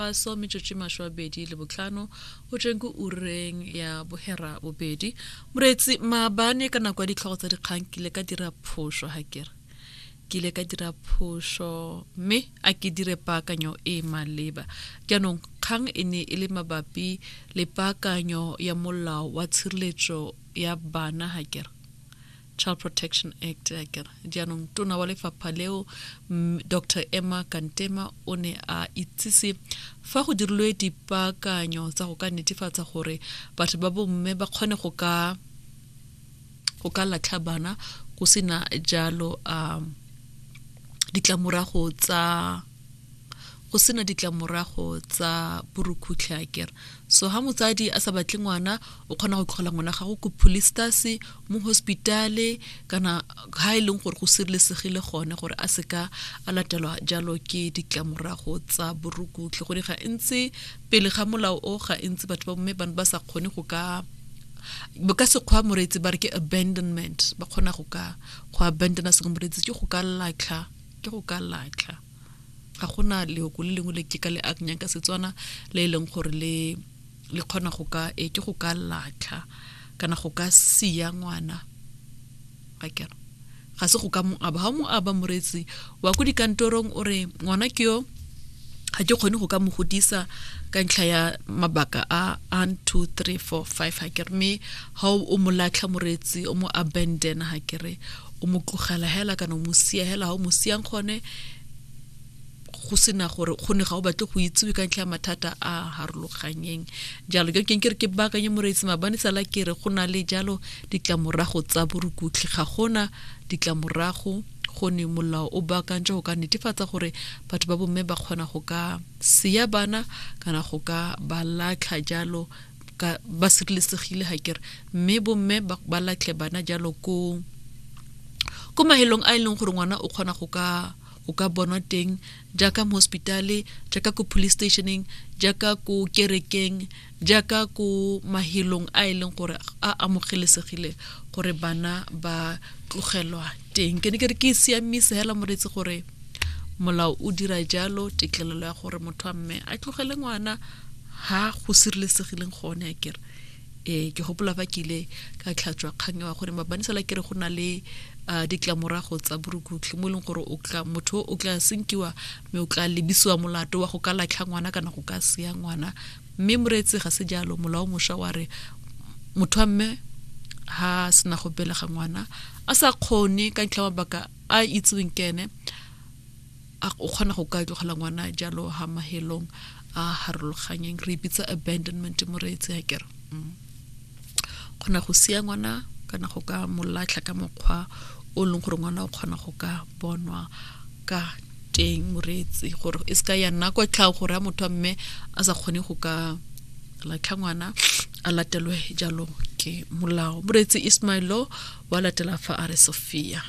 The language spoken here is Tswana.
Paso metsotso masho a bedi le botlhano go tsweng ko ureng ya bohera bobedi moreetsi maabane ka nako ya ditlhogo tsa dikgang ke ile ka dira phoso ga kere ke ile ka dira phoso mme a ke dire paakanyo e e maleba jaanong kgang e ne e le mabapi le paakanyo ya molao wa tshireletso ya bana ga kere Child Protection Act a kere jaanong tona wa lefapha leo Dr Emma Kantema o ne a itsise fa go dirilwe dipaakanyo tsa go ka netefatsa gore batho ba bomme ba kgone go ka go ka latlha bana go sena jalo um ditlamorago tsa go sena ditlamorago tsa borukhutlhe a kere so ha motsadi a sa batle ngwana o kgona go tlhola ngwana gago ko polistase mo hospitale kana ha e leng gore go sirelesegile gone gore a seka a latelwa jalo ke ditlamorago tsa borukhutlhe go di ga ntse pele ga molao o ga ntse batho ba bomme ba ba sa kgone go ka ka sekgwa moreetsi ba re ke abandonment ba kgona go ka go abandona se moreetsi ke go ka latlha ke go ka latlha ga gona leoko le lengwe le ke ka le akanyang ka setswana le e leng gore le le kgona go ka e ke go ka latlha kana go ka siya ngwana ga kera ga se go ka mo aba ga mo aba moretsi wa ko dikantorong o re ngwana ke yo ga ke kgone go ka mo godisa ka ntlha ya mabaka a 1 2 3 4 5 ga kere mme ga o mo latlha moretsi o mo abandona ga kere o mo tlogela hela kana o mo sia hela ga o mo siang gone go sena gore go ne ga o batle go itsewe ka ntlha ya mathata a harologanyeng jalo ke keng ke re ke baakanye moreetsi mabane sala ke re go na le jalo ditlamorago tsa borukutlhi ga gona ditlamorago go ne molao o baakantse go ka netefatsa gore batho ba bomme ba kgona go ka seya bana kana go ka ba latlha jalo ka ba sireletsegile ga kere mme bomme ba latlhe bana jalo ko ko mahelong a e leng gore ngwana o kgona go ka o ka bonwa teng jaaka mo hospitale jaaka ko police stationeng jaaka ko kerekeng jaaka ko mahelong a e leng gore a amogelesegile gore bana ba tlogelwa teng ke ne ke re ke siamise hela moreetse gore molao o dira jalo tetlelelo ya gore motho wa mme a tlogele ngwana ha go sireletsegileng gone a kere eh ke gopola ba ke ile ka tlhatswa kgang wa gore mabanisela kere go na le uh, ditlamorago tsa borukutlhi mo e leng gore motho o tla senkiwa mme o tla lebisiwa molato wa go ka latlha ngwana kana go ka seya ngwana mme moreetse ga se jalo molao mosha wa re motho wa mme ha sena go belega ngwana a sa kgone ka ntlha mabaka a itseweng ke ene a o kgona go ka tlogela ngwana jalo ha mahelong a harologanyeng re bitsa abandonment mo re etse ya kere mm. kgona go sia ngwana kana go ka molatlha ka mokgwa o leng gore ngwana o kgona go ka bonwa ka teng moreetsi gore e se ka ya nna kwa tlhago gore a motho a mme a sa kgone go ka latlha ngwana a latelwe jalo ke molao moreetsi ismailo wa latela fa a re sophia